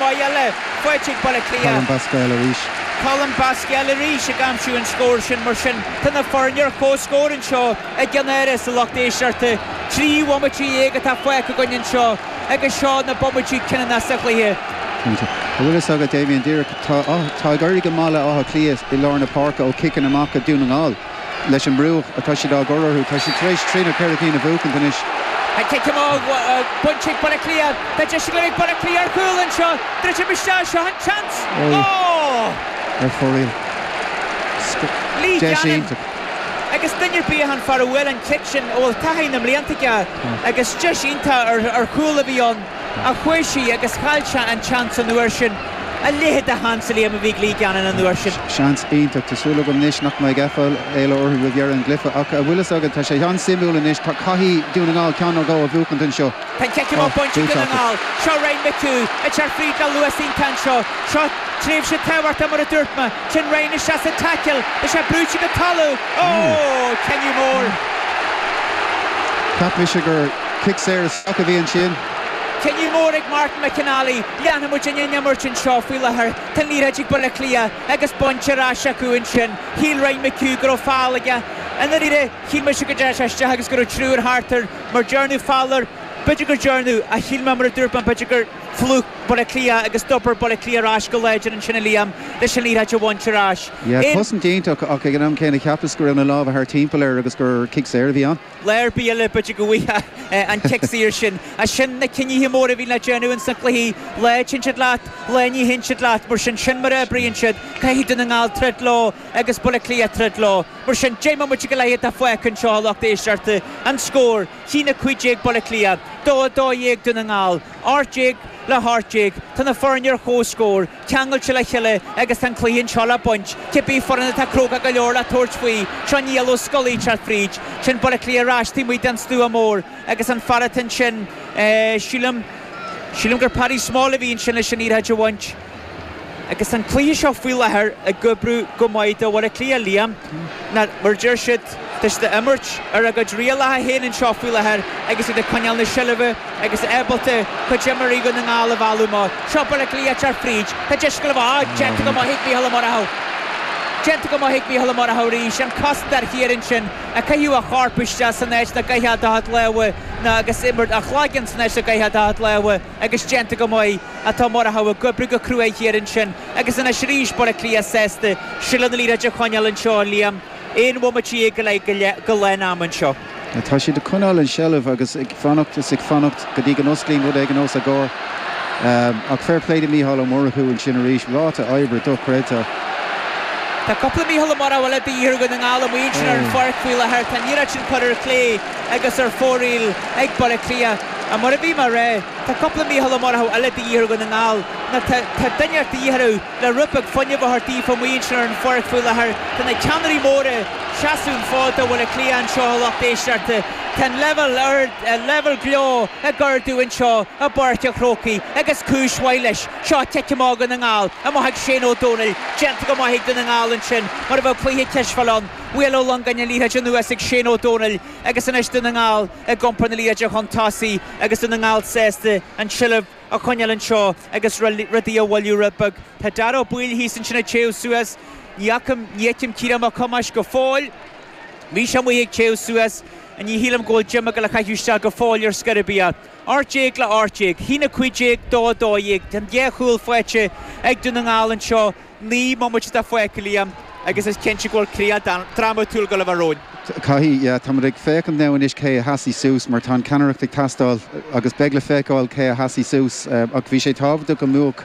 Maith eile faighte ag Baile Átha Cliath. Colm Basquel arís. Colm Basquel arís ag aimsiú an scóir sin mar sin. Tá na foirne ar chomhscór anseo i gceann eile sa lucht éisteachta. Trí bhomaite dhéag atá fágtha againn anseo agus seo na bomaití cinniúnacha sa chluiche. Cinnte. An bhfuil a fhios agat, Damien, díreach tá ag éirí go maith le Áth Cliath i lár na páirce ó chiceanna amach ó Dhún na nGall. leis an mbrú atá siad á chur orthu. Tá siad tar éis trí nó ceithre cinn a bhuachaint anois. An cic amach bainte ag Baile Cliath. Tá deis go mbeidh Baile Cliath ar chúl anseo. Druidim isteach, seo an seans. Ohh! Ar fóraoil. Lee Gannon agus duine ar bith an fear a bhuail an cic sin a bhfuil taithí na mblianta aige agus deis iontach ar chúl a bhí ann. a chuir sí agus chaill sé an tseans an uair sin. A leithéid de sheans, a Liam, a bhí ag Lee Gannon an uair sin. Seans iontach. Tá súil agam anois nach mbeidh aiféala orthu roimh dheireadh an chluiche ach, an bhfuil a fhios agat, tá sé an-suimiúil anois. Caithfidh Dún na nGall ceann nó dhó a bhuachaint anseo. Tá an cic amach bainte ag Dún na nGall. Seo Ryan McHugh ag teacht fríd le luas iontach anseo. Seo tréimhse tábhachtach mar a dúirt mé. Téann Ryan isteach sa taicil, bhí sé brúite go talamh. Ohh! Cinneadh mór. Cheap mise gur cic saor isteach a bhí ansin. Cinneadh mór ag Martin McNally. Leanfaidh muid an imirt anseo faoi láthair. Tá an liathróid ag Baile Átha Cliath agus bainte ar ais acu ansin. Shíl Ryan McHugh go raibh feall aige. I ndáiríre, shíl mise go dteachaidh sé isteach agus go raibh triúir thart air. Mar dhearnadh feall air. B'fhéidir gur dhearnadh, ach shíl mé mar a dúirt mé, b'fhéidir gur. phlúch Baile Átha Cliath agus d'oibir Baile Átha Cliath ar ais go láidir ansin a Liam leis an liathróid a bhaint ar ais. Bhí an chosaint iontach ach ag an am céanna cheapas go raibh na lámha thar timpeall air agus gur cic saor a bhí ann. Lá ar bith eile b'fhéidir go bhfaigheadh sé an cic saor sin. Ach sin na cinnithe móra a bhíonn le déanamh ins na cluichí, lá a théann siad leat, lá ní théann siad leat. Mar sin, sin mar a oibríonn siad. Caithfidh Dún na nGall troid leo agus Baile Átha Cliath troid leo. Mar sin, deich mbomaite go leith atá fágtha anseo a lucht éisteachta. An scór. Ceann 15 Baile Átha Cliath, dó 12 Dún na nGall, ocht déag le hocht déag, tá na foirne ar chomhscór, ceangailte le chéile agus tá an cluiche anseo le baint, cibé foireann atá cróga go leor le tabhairt faoi. Seo Niall Ó Scolaí ag teacht fríd, sin Baile Átha Cliath ar ais taobh amuigh den stua mór agus an fear atá ansin, sílim, sílim gur Paddy Small a bhí ansin leis an liathróid a bhaint. Agus an cluiche seo faoi láthair ag oibriú go maith do Bhaile Átha Cliath, Liam, mar a deir siad, tá siad ag imirt ar a gcuid rialacha féin anseo faoi láthair agus iad ag coinneáil na seilbhe agus ábalta cuid d'imreoirí Dhún na nGall a mhealladh amach. Seo Baile Átha Cliath ag teacht fríd. Tá deis cúil ann, á, déanta go maith ag Micheál Ó Murchadha. Déanta go maith ag Micheál Ó Murchadha arís. An cosantóir thiar ansin ag caitheamh a chorp isteach san áit nach gcaithfeá do chuid lámha nó agus imirt a chloigeann san áit nach gcaithfeá do chuid lámha. agus déanta go maith tá Murchú ag oibriú go cruaidh thiar ansin agus anois arís Baile Átha Cliath sásta seilbh na liathróide a choinneáil anseo a Liam aon bhomaite dhéag go leith go lán ama anseo. Tá siad ag coinneáil an tseilbh agus ag fanacht is ag fanacht go dtí go n-osclaíonn rud éigin os a gcomhair ach fair play do Mícheál Ó Murchú ansin arís ráta oibre dochreidte. Tá cúpla Mícheál Ó Murchú eile de dhíth ar Dhún na nGall amuigh ansin ar an pháirc faoi láthair, tá an iarracht sin curtha ar chlé agus ar fóraoil ag Baile Átha Cliath. Mar a bhí mé ag rá, tá cúpla Mícheál Ó Murchadha eile de dhíth ar Dhún na nGall. Nó tá, tá duine inteacht de dhíth orthu le rud beag fuinnimh a thabhairt daofa amuigh ansin ar an pháirc faoi láthair. Tá na ceannairí móra ag seasamh an fhóid do Bhaile Átha Cliath anseo a lucht éisteachta. Tá an leibhéal ar, leibhéal gleo ag ardú anseo i bPáirc an Chrócaigh agus cúis mhaith leis. Seo cic amach Dhún na nGall, amach ag Shane Ó Domhnaill, déanta go maith ag Dún na nGall ansin mar a bheadh cluiche cispheile ann, bhuail Ó Longáin an liathróid anuas ag Shane Ó Domhnaill agus anois Dún na nGall. ag iompar na liathróide chun tosaigh agus Dún na nGall sásta an tseilbh a choinneáil anseo agus rudaí a mhoilliú rud beag. Tá Dara Ó Baoill thíos ansin ag téamh suas. Ní fhacaim, ní fheicim Ciarán Mac Thomáis go fóill. Bhí sé amuigh ag téamh suas. Ní shílim go bhfuil Jim ag dul a chaitheamh isteach go fóill ar scor ar bith. Ocht déag le ocht déag. 1, 15, 2, 12. Tá an dhá chúl faighte ag Dún na nGall anseo. Naoi mbomaite fágtha, Liam, agus is cinnte go bhfuil críoch drámatúil go leor romhainn. Caithfidh, yeah. Táimid ag féachaint now anois cé a sheasfaidh suas mar tá an ceannaireacht ag teastáil agus beidh le feiceáil cé a sheasfaidh suas ach bhí sé tábhachtach go mbuafadh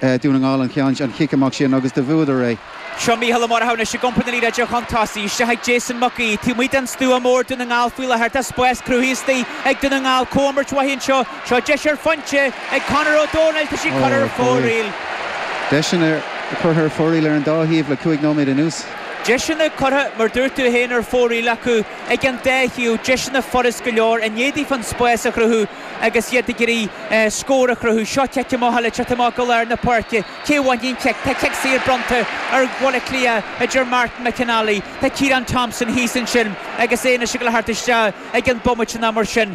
Dún na nGall an cheann, an chic amach sin agus do bhuadar é. Seo Mícheál Ó Murchú anois ag iompar na liathróide chun tosaigh, isteach ag Jason Mac Aoidh. Taobh amuigh den stua mór Dún na nGall faoi láthair tá spás cruthaithe istigh ag Dún na nGall, comhimirt mhaith anseo Seo deis ar phointe ag Conor Ó Dónaill tá sí curtha ar fóraoil. Deiseanna curtha ar fóraoil ar an dá thaobh le cúig nóiméad anuas. Deiseanna curtha, mar dúirt tú féin, ar fóraoil acu ag an dá thaobh, deiseanna furast go leor i ndiaidh daofa an spás a chruthú agus iad ag iarraidh scór a chruthú. Seo cic amach le teacht amach go lár na páirce. Cé a bhainfidh an cic? Tá cic saor bronnta ar Bhaile Átha Cliath a deir Martin McNally, tá Ciarán Thompson thíos ansin agus é anois ag dul a theacht isteach i gcionn bomaite nó mar sin.